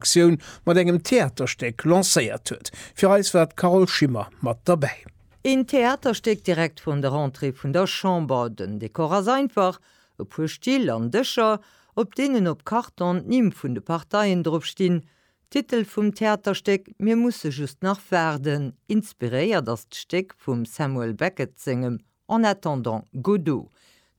Aktioun mat engem Theaterstéck lancéiert huet. Fir eis war d'Carole Schimmer mat derbäi. Een Theaterstéck direkt vrun der Entrée vun der Chamber. Den Dekor ass einfach, e puer Still an Dëscher, op deenen op Karton d'Nimm vun de Parteien drop stinn. Titel vum Theaterstéck, Mir musse just nach waarden. Inspiréiert ass d'Stéck vum Samuel Beckett sengem En attendant Godot,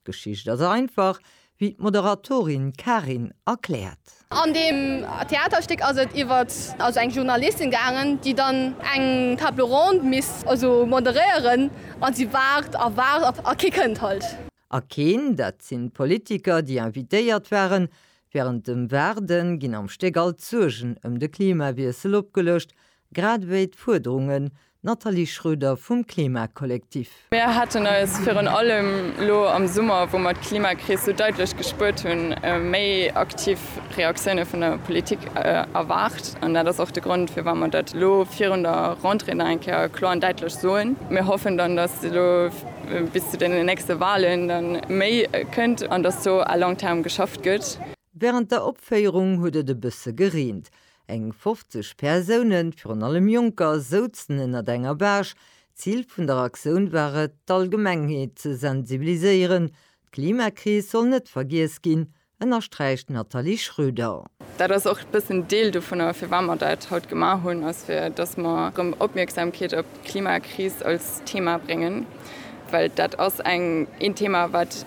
d'Geschicht ass einfach, wéi d'Moderatorin Karin erkläert. An deem Theaterstéck ass et iwwert also eng Journalistin gaangen, déi dann eng Table ronde misst also moderéieren a si waart a waart a kee kënnt halt. A keen, dat sinn d'Politiker, déi invitéiert waren. Wärend dem Waarde ginn am Stéck all d'Suergen ëm de Klimawiessel opgeluecht, Grad ewéi d'Fuerderungen, Nathalie Schroeder, vum Klimakollektiv. Mir haten eis virun allem elo am Summer, wou mer d'Klimakris sou daitlech gespuert hunn, méi aktiv Reaktioune vun der Politik erwaart. An dat ass och de Grond, firwat mer dat elo virun der Rentrée nach eng Kéier kloer an daitlech soen. Mir hoffen dann, datt elo bis zu deenen nächste Wahlen da méi kënnt an datt do à long terme geschafft gëtt. Wärend der Opféierung huet et e bësse gereent. Eng 50 Persounen, virun allem Jonker, souzen ënnert enger Baach. D'Zil vun der Aktioun war et, d'Allgemengheet ze sensibiliséieren. D'Klimakris soll net vergiess ginn, ënnersträicht d'Nathalie Schröder. Dat ass och e bëssen Deel dovunner, firwat mer dat haut gemaach hunn, ass fir dass mer erëm Opmierksamkeet op d'Klimakris als Thema bréngen, well dat ass eng een Thema wat,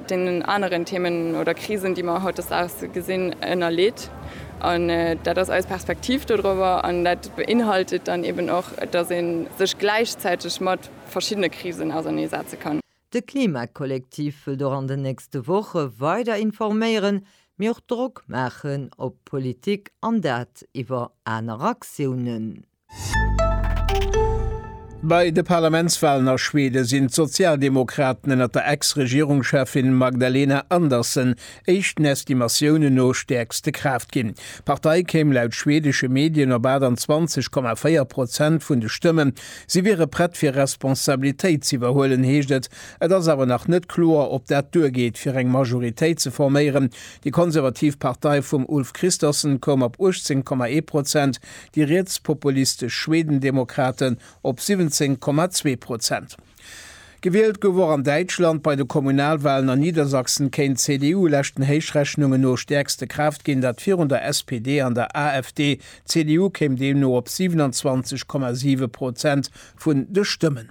deenen aneren Themen oder Krisen, déi mer hautdesdaags gesinn, ënnerleet. An dat ass eis Perspektiv dodrower. An dat beinhaltet dann eben och, dass ee sech gläichzäiteg mat verschiddene Krisen ausernee setze kann. De Klima-Kollektiv wëllt och an den nächste Woche weider informéieren, mee och Drock maachen op d'Politik, an dat iwwer aner Aktiounen. Bei de Parlamentswalen a Schweden sinn d'Sozialdemokraten ënnert der Ex-Regierungscheffin Magdalena Andersson éischten Estimatiounen no stäerkste Kraaft ginn. D'Partei kéim laut schwedesche Medien op 28,4 Prozent vun de Stëmmen. Si wiere prett fir Responsabilitéit ze iwwerhuelen, heescht et. Et ass awer nach net kloer, ob dat duergeet fir eng Majoritéit ze forméieren. Déi konservativ Partei vum Ulf Kristersson koum op 18,1 Prozent. déi rietspopulistesch Schwedendemokraten op 17,2 Prozent. Gewielt gouf och an Däitschland. Bei de Kommunalwalen an Niedersachsen kéint d'CDU leschten Héichrechnungen no stäerkste Kraaft ginn, dat virun der SPD an der AfD. D'CDU kéim deemno op 27,7 Prozent vun de Stëmmen.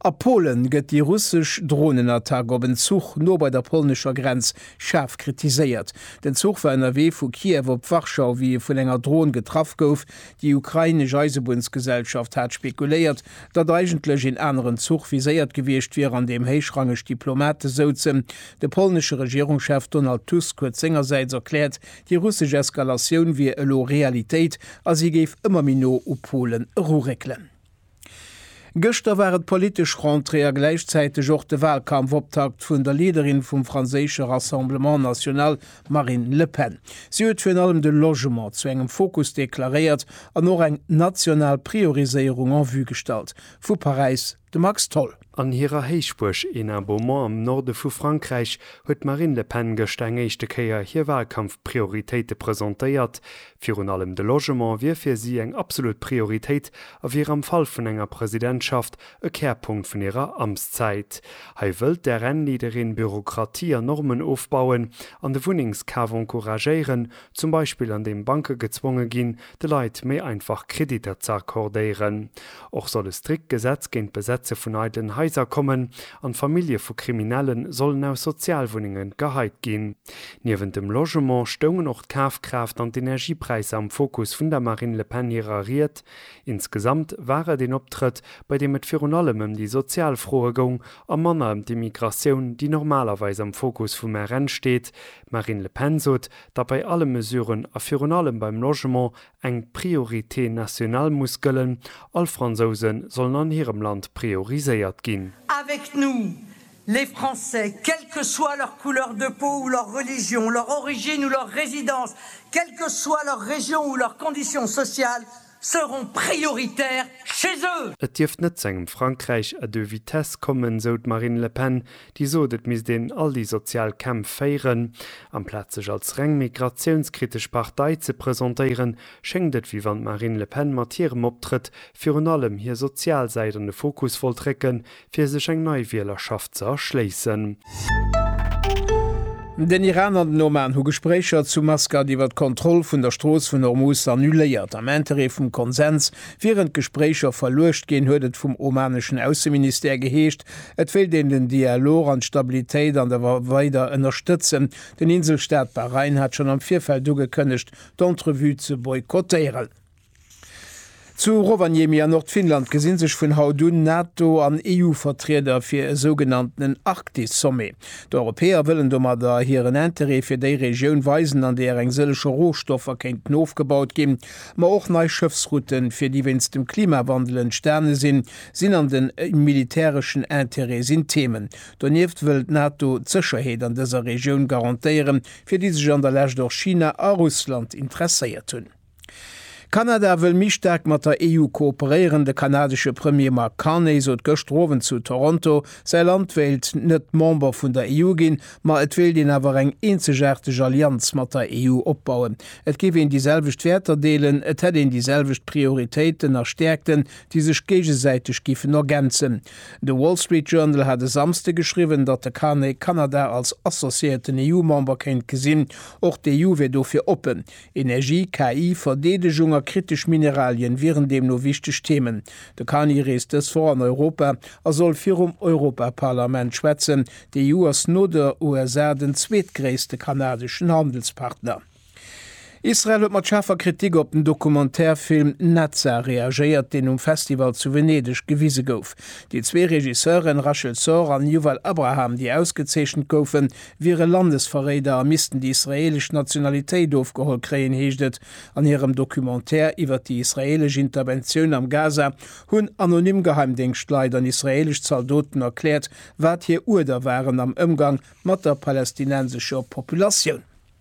A Polen gëtt déi russesch Dronenattack op en Zuch no bei der polnescher Grenz schaarf kritiséiert. Den Zuch war ënnerwee vu Kiew op Warschau, wéi e vun enger Dron getraff gouf. Déi ukrainesch Eisebunnsgesellschaft hat spekuléiert, datt eigentlech een aneren Zuch viséiert gewiescht wier, an deem héichrangeg Diplomate souzen. De polnesche Regierungschef Donald Tusk huet sengersäits erkläert, déi russesch Eskalatioun wier elo Realitéit a si géif ëmmer méi no u Polen eruréckelen. Gëschter war et d'politesch Rentrée a gläichzäiteg och de Walkampfoptakt vun der Leaderin vum franséische Rassemblement National, Marine Le Pen. Si huet virun allem de Logement zu engem Fokus deklaréiert an och eng national Prioriséierung en vue gestallt. Vu Paräis de Max Tholl. An hirer Héichbuerg Hénin-Beaumont am Norde vu Frankräich huet d'Marine Le Pen gëschter eng éischte Kéier hir Walkampfprioritéite presentéiert, Virun allem de Logement wier fir si eng absolut Prioritéit a wier am Fall vun enger Presidentschaft e Kärpunkt vun hirer Amtszäit. Hei wëllt d'RN-Leaderin Bürokratie an Normen ofbauen an de Wunnengskaf encouragéieren, zum Beispill an deem Banke gezwonge ginn, de Leit méi einfach Kreditter ze accordéieren. Och soll e strikt Gesetz géint d'Besetze vun eidelen Haiser kommen an d'Famillje vu Kriminelle sollen aus Sozialwunnenge geheit ginn. Niewent dem Logement stoungen och d'Kafkraaft an d'Energiepräisser am Fokus vun der Marine Le Pen hirer Ried. Insgesamt war et een Optrëtt, bei deem et virun allem ëm déi sozial Froe goung a manner ëm d'Immigratioun, déi normalerweis am Fokus vum RN steet. D'Marine Le Pen sot, datt bei alle Mesuren a virun allem beim Logement eng Priorité nationale muss gëllen, all Fransouse sollen an hirem Land prioriséiert ginn. Avec nous, Les Français, quelle que soit leur couleur de peau ou leur religion, leur origine ou leur résidence, quelle que soit leur région ou leur condition sociale, seront prioritaires chez eux! Et dierft net zu engem Frankräich à deux vitesses kommen, sou d'Marine Le Pen, déi sot, et misst een all déi sozial Kämpf féieren. Amplaz sech als reng migratiounskritesch Partei ze presentéieren, schéngt et, wéi wann d'Marine Le Pen mat hirem Optrëtt virun allem hir sozial Säit an de Fokus wollt récken, fir sech eng nei Wielerschaft ze erschléissen. Den Iran an den Oman hu Gespréicher zu Maskat iwwer d'Kontroll vun der Strooss vun Hormuz annuléiert. Am Interêt vum Konsens wieren d'Gespréicher verluecht ginn, huet et vum omaneschen Ausseministère geheescht. Et wéilt een den Dialog an d'Stabilitéit an der War weider ënnerstëtzen. Den Inselstaat Bahrain hat schonn am Virfeld ugekënnegt, d'Entrevue ze boykottéieren. Zu Rovaniemi an Nordfinnland gesi sech vun haut un Nato an EU-Vertrieder fir e sougenanntenen Arktis-Sommet. D'Europäer wëllen domadder hiren Interêt fir déi Regioun weisen, an deeër eng sëllege Rohstoffer kéinten ofgebaut ginn. Ma och nei Schëffsrouten, fir déi wéinst dem Klimawandel entstane sinn, sinn an den militäreschen Interêt sinn Themen. Donieft wëll d'Nato d'Sécherheet an dëser Regioun garantéieren, fir déi sech an der Lescht och China a Russland interesséiert hunn. Kanada wëll méi staark mat der EU kooperéieren. De kanadesche Premier Mark Carney sot gëschter Owend zu Toronto, säi Land wéilt net Member vun der EU ginn, ma et wéilt een awer eng eenzegaarteg Allianz mat der EU opbauen. Et géif een déi selwecht Wäerter deelen, et hätt een déi selwecht Prioritéiten a Stäerkten, déi sech géigesäiteg giffen ergänzen. De Wall Street Journal hat e Samsde geschriwwen, datt de Carney Kanada als associéierten EU-Member kéint gesinn. Och d'EU wier dofir oppen. Energie, KI, Verdeedegung a kritesch Mineralien wieren deemno wichteg Themen. De Carney reest dës Woch an Europa a soll virum Europaparlament schwätzen. D'EU ass no de USA den zweetgréisste kanadeschen Handelspartner. Israel huet mat schaarfer Kritik op den Documentaire-Film Netza reagéiert, deen um Festival zu Venedeg gewise gouf. Déi zwee Regisseuren Rachel Sor an Yuval Abraham, déi ausgezeechent goufen, wiere Landesverréider a missten déi israeelesch Nationalitéit ofgeholl kréien, heescht et an hirem Documentaire iwwert déi israeelesch Interventioun am Gaza, hunn anonym Geheimdéngschtleit an israeelesch Zaldoten erkläert, wat hir Uerder waren am Ëmgang mat der palästinensescher Populatioun.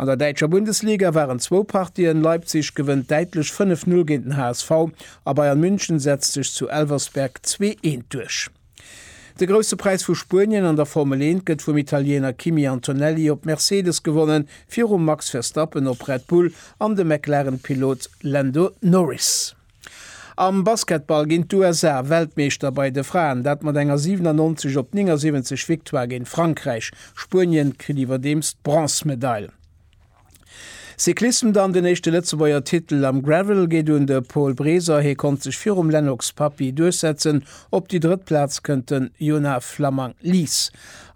An der däitscher Bundesliga waren zwou Partien, Leipzig gewënnt däitlech 5-0 géint den HSV a Bayern München setzt sech zu Elversberg zwee eent duerch. De Grousse Präis vu Spuenien an der Formel 1 gëtt vum Italiener Kimi Antonelli op Mercedes gewonnen, virum Max Verstappen op Red Bull an dem McLaren-Pilot Lando Norris. Am Basketball ginn d'USA Weltmeeschter bei de Fraen, dat mat enger 97 op 79 Victoire géint Frankräich. Spuenien kritt iwwerdeems d'Bronzmedail. Cyclissem dann, Den éischte Lëtzebuerger Titel am Gravel geet un de Paul Breser, hie konnt sech virum Lennox Papy duerchsetzen. Op déi drëtt Plaz kënnt den Jonah Flammang-Lies.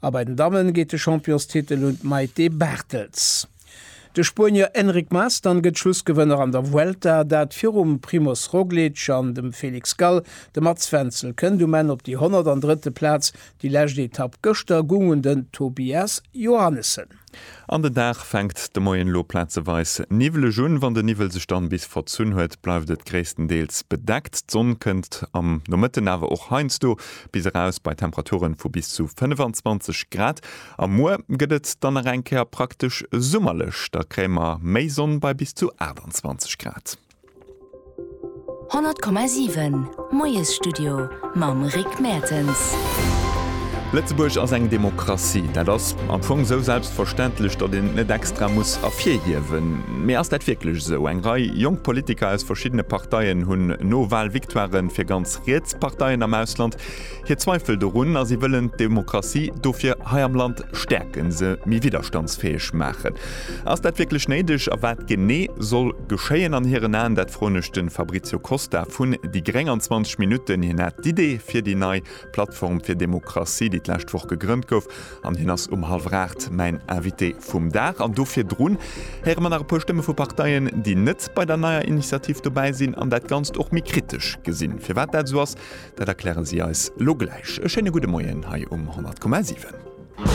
A bei den Damme geet de Championstitel un d'Maïté Barthels. De Spuenier Enric Mas dann gëtt Schlussgewënner an der Vuelta, dat virum Primoz Roglic an dem Felix Gall. De Mats Wenzel kënnt um Enn op déi 103. Plaz. Déi lescht Etapp gëschter goung un den Tobias Johannessen. An den Dag fänkt de Moien elo plazeweis niwweleg un. Wann de Niwwel sech dann bis verzunn huet, bleift et gréisstendeels bedeckt. D'Sonn kënnt am Nomëtten awer och heiansdo bis eraus bei Temperaturen vu bis zu 25 Grad. A muer gëtt et dann nach eng Kéier praktesch summerlech, da kréie mer méi Sonn bei bis zu 28 Grad. 100,7 Moiesstudio mam Rick Mertens. Lëtzebuerg ass eng Demokratie. Dat ass am Fong esou selbstverständlech, datt een et net extra muss ervirhiewen. Mee ass dat wierklech esou? Eng Rei jonk Politiker aus verschiddene Parteien hunn no Wahlvictoiren fir ganz riets Parteien am Ausland, Hir Zweifel dorun a si wëllen d'Demokratie dofir hei am Land stäerken, se méi widderstandsfäeg maachen. Ass dat wierklech néideg a wat genee soll geschéien an hiren Aen? Dat froen ech de Fabrizio Costa vun déi gréng an 20 Minutten. Hien hat d'Idee fir déi nei Plattform fir Demokratie, déi d'lescht Woch gegrënnt gouf an hien ass um hallwer aacht mäin Invité vum Dag. An do virdrun héiere mer nach e puer Stëmme vu Parteien, déi net bei der neier Initiativ dobäi sinn an dat Ganzt och méi kritesch gesinn. Firwat dat esou ass, Dat erklären si eis lo gläich. E schéine gudde Moien hei um 100,7.